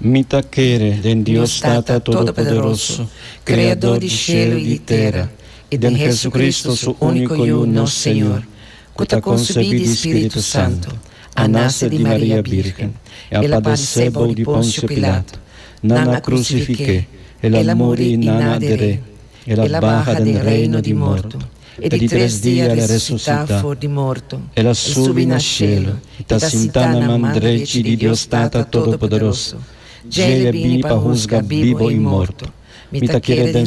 Mi ta kere den Dios Tata Todopoderoso, Kreadó di shelu i di tera, i den Hesukristu, Su úniko Yu, nos Señor, ku ta konsebí di Spiritu Santu, a nase di Maria Bírgen, e a padesé bou di Ponsio Pilato, nan a krusifiké, el a muri i nan a der'é, el a baha den reino di morto, E di tres dia el a resusitá for di morto, el a subi na shelu i ta sintá na man drechi di Dios Tata Todopoderoso. Djei el a bini pa husga bibu i morto. Mi ta kere den